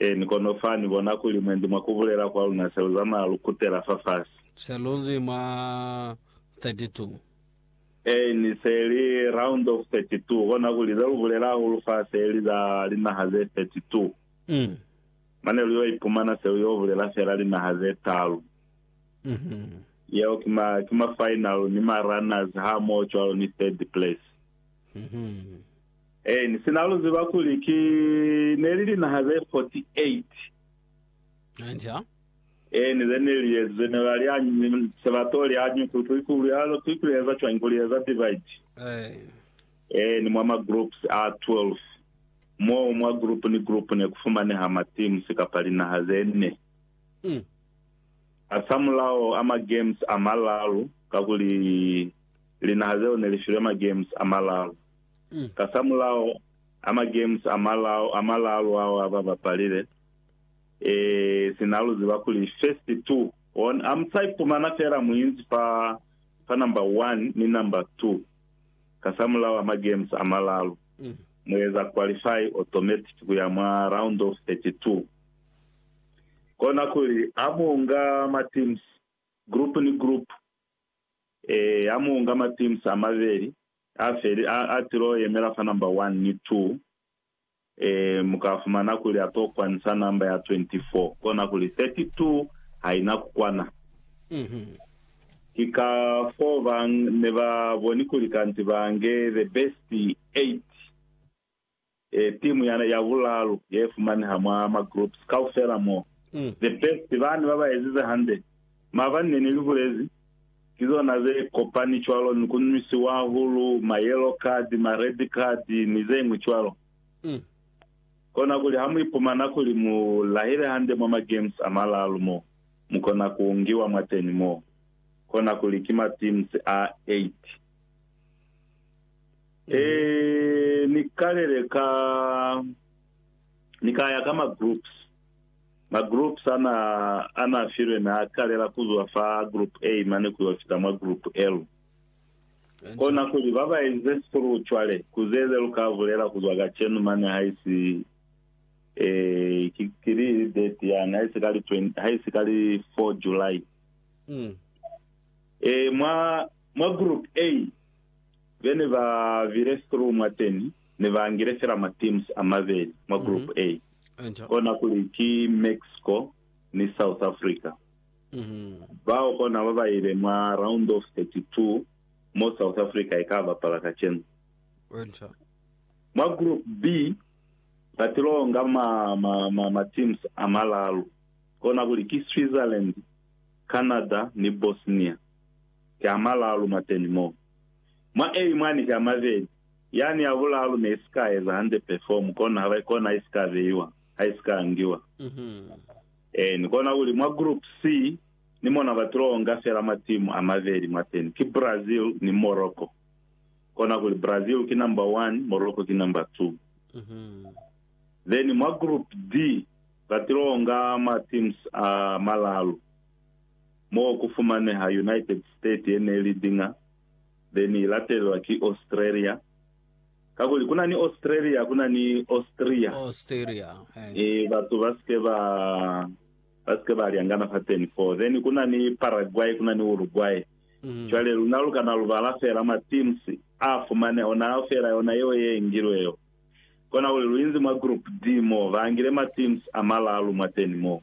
Ee, ni kono fa ni bona kuli mwendi mwa ku bulela kwa luna se lu zamaya lu kutela fafasi. Se lu nzi mwa 32. Ee, ni se li round of 32, kona kuli ze lu bulela hahulu fa se li za linaha ze 32. Mm. Mane lu yo ipumana se lu yo bulela fela linaha ze talu. Mhm. Yeo ki ma, ki ma final ni ma runners hamoho cwalo ni third place. Mhm. Eeni, sina lu ziba kuli ki neli linaha ze 48. Hanca. Eeni, ze ne li ezi ze ne ba li anyi, se ba to li anyi kuli ki ku lya, ki ku eza cwañi, ku li eza divide. Eeni. Eeni, mwa ma groups a 12, moo mwa group ni group ne ku fumaneha ma teams kapa linaha ze ne. Mm. Hasamulaho a ma games a malalu, kakuli linaha zeo ne li filwe ma games a malalu. Kasamulaho a ma-games a malalu ao a ba bapalile, sina lu ziba kuli first two won, a mu sa ipumana feela mu inzi fa number one ni number two kasamulaho a ma-games a malalu, mu eza qualify automatic ku ya mwa round of 32. Kona kuli ha mu nga ma-teams, group ni group, ha mu nga ma-teams a mabeli, Ha feli, a, a tilo yemela fa namba 1 ni 2. E, mu ka fumana kuli a to kwanisa namba ya 24, kona kuli 32 ha i na ku kwana. Ki ka foo ba ne ba boni kuli kanti ba nge the best 8. timu ya ya bulalu ye fumaneha mwa ma groups kaufela mo the best bani ba ba ezize hande mabani ne ni li bulezi ki zona ze kopani cwalo ni ku nwisiwa hulu ma yellow card ma red card ni ze ngwi cwalo kona kuli ha mu ipumana kuli mu lahile hande mwa ma games a malalu mo mu kona ku ngiwa mwateni mo kona kuli ki ma teams a 8 Eeh ni kalele ka ni kaya ka ma groups. Ma groups ana ana filwe na kalela kuzwa fa group A mane kuyo fita mwa group L. Kona kuli baba enze through cwale kuzeze luka bulela kuzwa kacenu mane haisi eh ki kili date yani haisi kali 20 haisi kali 4 July. Mm. Eh mwa mwa group A Be ne ba bile through mwa teni ne ba ngile fela ma teams a mabeli mwa group A, kona kuli ki Mexico ni South Africa. Bao kona ba ba ile mwa round of 32 mo South Africa i ka bapala kacenu. Mwa group B ba tilo nga ma, ma, ma, ma teams a malalu, kona kuli ki Switzerland, Canada ni Bosnia. ki a malalu mwateni mo. Mwa A imwani ki a mabeli. Yani ya bulalu ne isika eza hande perform, kono ha ba, kona isika beiwa, ha isika angiwa. Eeni, kona kuli mwa group C ni mona ba tilo onga fela matimu a mabeli mwateni, ki Brazil ni Morocco. Kona kuli Brazil ki number one, Morocco ki number two. Then mwa group D ba tilo onga matims a malalu. mo ku fumaneha United States ye ne li diña, be ni latelelwa ki Australia. Kakuli ku na ni Australia, ku na ni Austria. Austria, eh. E, batu ba si ke ba, ba si ke ba lyangana fateni foo. Then ku na ni Paraguay, ku na ni Uruguay. Mm. Cwale luna lu kana lu bala fela ma teams a fumane ona fela yona yeo ye ngilwe yo. Kona kuli lu inzi mwa group D mo, ba ngile ma teams a malalu mwateni mo.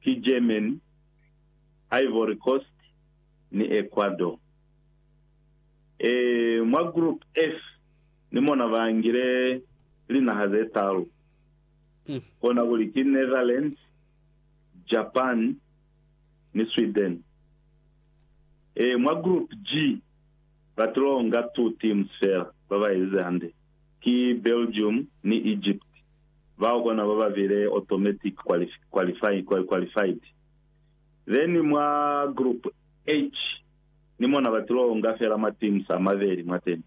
ki Germany, Ivory Coast ni Ecuador. E mwa Group F ni mona ba ngile linaha ze talu, kona kuli ki Netherlands, Japan ni Sweden. E mwa Group G ba tilo nga two teams fela ba ba ezize hande. ki Belgium ni Egypt, bao kona baba bile automatic qualified. Then mwa Group H ni mona batilo onga fela ma teams a mabeli mwateni,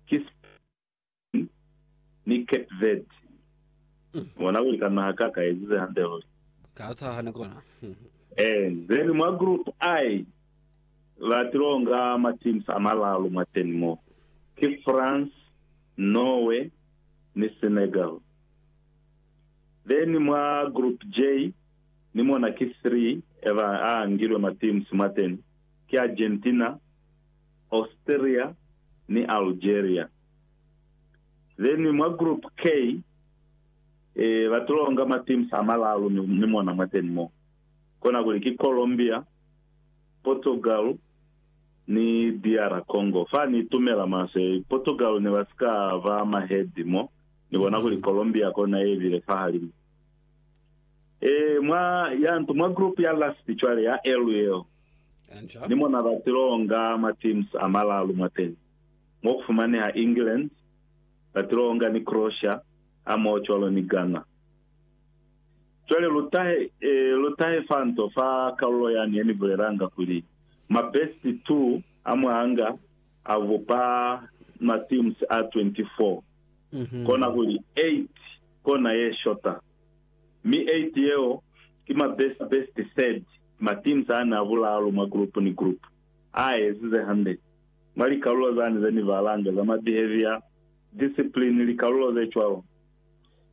ki Spain ni Cape Verde. Mubona kuli ka naha ka ka ezize hande luli. Ka taha ni kona. Eeh, then mwa Group I Ba tilo nga ma teams a malalu mwateni mo, ki France, Norway ni Senegal. Then mwa group J ni mona ki 3 eba a angilwe ma teams mwateni, ki Argentina, Austria ni Algeria. Then mwa group K e ba tilo nga ma teams a malalu ni mona mwateni mo, kona kuli ki Colombia, Portugal ni DR Congo. Fa ni itumela maswe, Portugal ne ba si ka ba mahezi mo, ni bona kuli Colombia kona ye bile fahalimu. Ee, mwa ya ntu, mwa group ya last cwale ya L yeo, Enca. ni mona ba tilo onga ma teams a malalu mwateni, mo ku fumaneha England, ba tilo onga ni Croatia, hamoho cwalo ni Ghana. Cwale lu tahe, lu tahe fanto fa kalulo yani ye ni bulelanga kuli, Mabesti tu a mwanga a bupa mateams a 24, kona kuli 8 kona ye shota, mi 8 yeo ki mabesti besti third, mateams ani a bulaalu mwa group ni group a ezize hande mwa likalulo zani ze ni balanga za ma behavior, discipline, likalulo ze cwalo.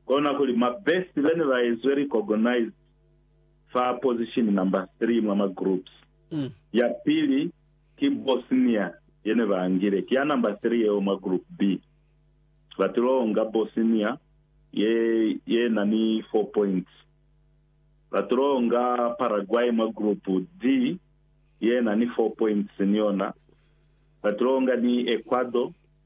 kona kuli ma best bene ba ezwe recognized fa position number 3 mwa ma groups. Ya pili ki Bosnia yene ba ngile, ki ya number 3 yeo mwa group B. Ba tilo nga Bosnia ye ye na ni 4 points. Ba tilo nga Paraguay mwa group D ye na ni 4 points ni yona. Ba tilo nga ni Ecuador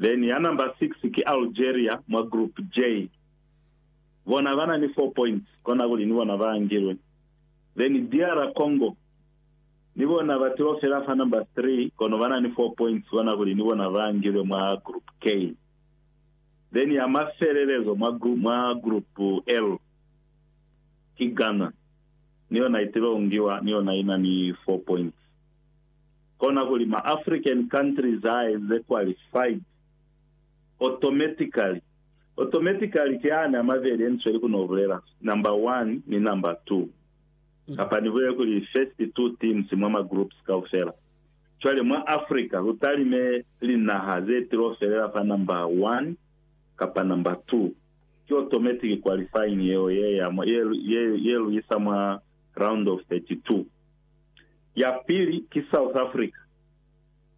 Then ya number six ki Algeria mwa group J. Bona bana ni four points kona kuli ni bona ba angilwe. Then DR Congo ni bona ba tiwa fela fa number three kono bana ni four points kona kuli ni bona ba angilwe mwa group K. Then ya mafelelezo mwa group mwa group L ki Ghana ni yona itilo ngiwa ni yona ina ni four points. kona kuli ma African countries a enze qualified automatically. Automatically ki ani amabeli yenisweli ku nobulela number one ni number two, kapa nibulele kuli first two teams mwa ma groups kaufela. Cwale mwa Africa lutalime linaha zetilo felela fa number one kapa number two. Ki automatic qualifying yeo ye ya mwa, ye, ye, ye luisa mwa round of 32. Ya pili ki South Africa.